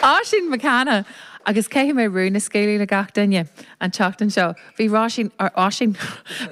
Oisín McCanna, Agus caithfidh mé rún a scaoileadh le gach duine an tseachtain seo. Bhí Róisín, or Oisín,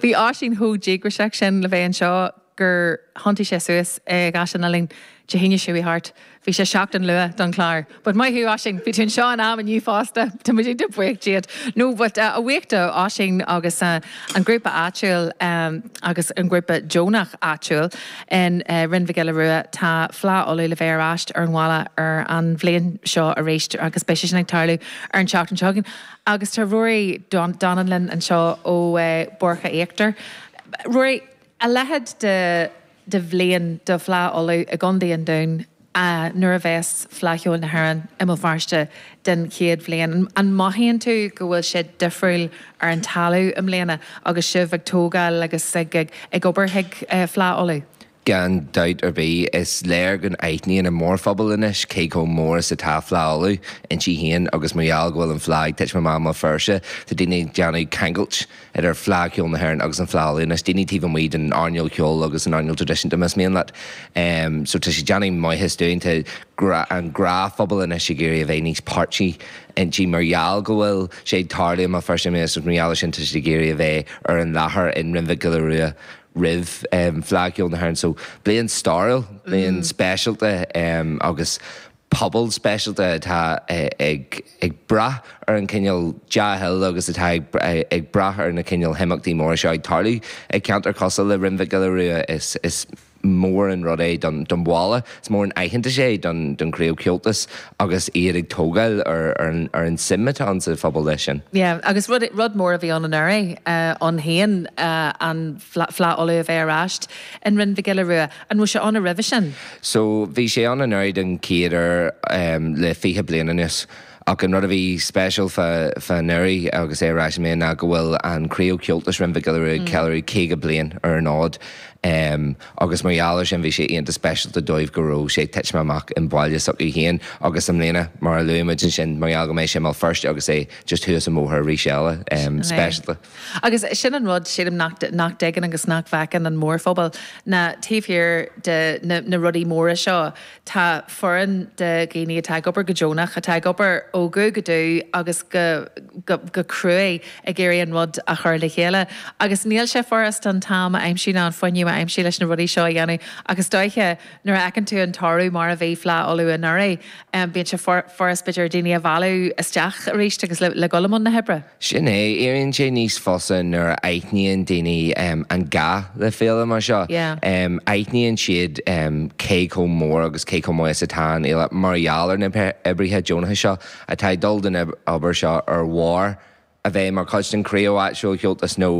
bhí Oisín chomh díograiseach sin le bheith anseo gur thiontaigh sé suas i gCaisleán na Linne Dé hAoine seo a chuaigh thart. Bhí sé seachtain luath don chlár. But maith thú, Oisín. Bhí tú anseo in am inniu fosta. Tá muid an-bhuíoch díot. No, but a bhuíochas do Oisín agus an grúpa áitiúil agus an grúpa deonach áitiúil in Rinn Mhic Giolla Rua, tá Fleadh Uladh le bheith ar ais ar an bhaile ar an bhliain seo arís agus beidh sé sin ag tarlú ar an tseachtain seo chugainn. Agus tá Ruairí Donnellan anseo ó Bhoirche Íochtar. Ruairí, a leithéid de. de bhliain do Fhleadh Uladh i gContae an Dúin nuair a bheas Fleadh Cheoil na hÉireann i mBéal Feirste don chéad bhliain. An mothaíonn tú go bhfuil sé difriúil ar an talamh i mbliana agus sibh ag tógáil agus ag obair chuig Fleadh Uladh? Gan dabht ar bith. Is léir go n-aithníonn an mórphobal anois cé chomh mór is atá Fleadh Uladh inti féin agus mar gheall go bhfuil an Fleadh ag titim amach i mBéal Feirste tá daoine ag déanamh ceangailt idir Fleadh Cheoil na hÉireann agus an Fleadh Uladh, anois daoine taobh amuigh den earnáil cheoil agus den earnáil traidisiúnta más mian leat. So tá sé déanamh maitheas dúinn, tá an gnáthphobal anois ag iarraidh a bheith níos páirtí inti mar gheall go bhfuil sé ag tarlú i mBéal Feirste anois agus mar gheall ar sin tá siad ag iarraidh a bheith ar an láthair in Rinn Mhic Giolla Rua roimh Fleadh Cheoil na hÉireann. So bliain stairiúil, bliain speisialta agus. pobal speisialta atá ag brath ar an chineál dea-thoil agus atá ag brath ar na cineál himeachtaí móra seo ag tarlú. I gceantar cosúil le Rinn Mhic Giolla Rua is mór an rud é don bhaile, is mór an aitheantas é don chraobh Comhaltais agus iad ag tógáil ar an tsuim atá ann sa phobal leis sin. Yeah, agus rud mór a bhí ann anuraidh ann féin, an Fleadh Fleadh Uladh a bheith ar ais in Rinn Mhic Giolla Rua. An raibh sé ann roimhe sin? So, bhí sé ann anuraidh don chéad uair le fiche bliain anuas. Ach an rud a bhí speisiúil fá anuraidh agus é ar ais i mbliana ná go bhfuil an chraobh Comhaltais Rinn Mhic Giolla Rua ag ceiliúradh caoga bliain ar an fhód. Agus mar gheall ar sin bhí sé iontach speisialta dóibh go raibh sé ag titim amach i mbaile s'acu féin. Agus i mbliana, mar a luaigh muid ansin, mar gheall go mbeidh sé i mBéal Feirste agus é just thuas an bóthar arís eile, speisialta. Agus sin an rud, sílim, nach dtuigeann agus nach bhfeiceann an mórphobal, ná taobh thiar de na rudaí móra seo, tá foireann de dhaoine atá ag obair go deonach, atá ag obair ó dhubh go dubh agus go cruaidh ag iarraidh an rud a chur le chéile. Agus níl sé furast an t-am a aimsiú ná an fuinneamh a aimsiú leis na rudaí seo a dhéanamh. Ach is dóiche nuair a fheiceann tú an toradh mar a bhí Fleadh Uladh anuraidh, bíonn sé furast b'fhéidir daoine a mhealladh isteach arís agus le dhul i mbun na hoibre. Sin é, éiríonn sé níos fusa nuair a aithníonn daoine an gá le féile mar seo. Aithníonn siad cé chomh mór agus cé chomh maith is atá an fhéile mar gheall ar na oibrithe deonacha seo atá ag dul don obair seo ar bharr a bheith mar chuid den chraobh áitiúil Chomhaltas nó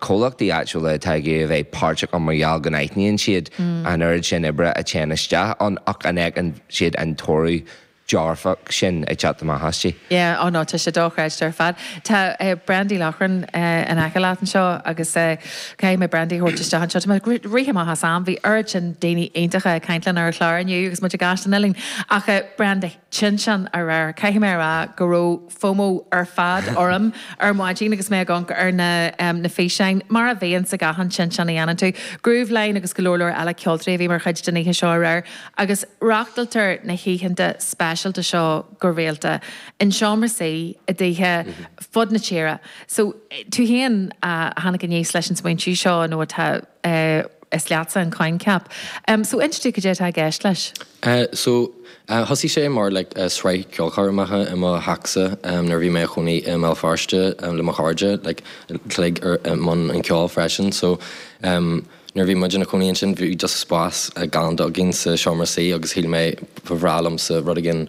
comhlachtaí áitiúla atá ag iarraidh a bheith páirteach ann mar gheall go n-aithníonn siad an oiread sin oibre a théann isteach ann ach an fheiceann siad an toradh dearfach sin ag teacht amach aisti. Yeah, oh no, tá sé dochreidte ar fad. Tá Brendy Loughran in aice leat anseo agus caithfidh mé Brendy a thabhairt isteach anseo. Tá muid ag rith amach as am, bhí oiread sin daoine iontacha ag caint linn ar an chlár inniu agus muid i gCaisleán Uidhilín. Ach Brendy, Tinteán aréir, caithfidh mé a rá go raibh. fomo ar fad orm ar maidin agus mé ag amharc ar na na físeáin, mar a bhíonn sa gach aon Tinteán a dhéanann tú. Grooveline agus go leor leor eile ceoltóirí a bhí mar chuid den oíche seo aréir agus reáchtáiltear na hoícheanta speisialta seo go rialta in seomra suí i dtithe fud na tíre so tú féin a tháinig aníos leis an smaointiú seo nó tá is leatsa an coincheap so inis dúinn cad é atá i gceist leis. Eh so, eh thosaigh sé mar like eh sraith ceolchoirmeacha i mo theachsa em nuair a bhí mé a chónaí i mBéal Feirste em le mo chairde like uilig i mbun an cheoil freisin so em nuair a bhí muid ina chónaí ansin bhí just spás galánta againn sa seomra suí agus shíl mé ba bhreá liomsa rud éigin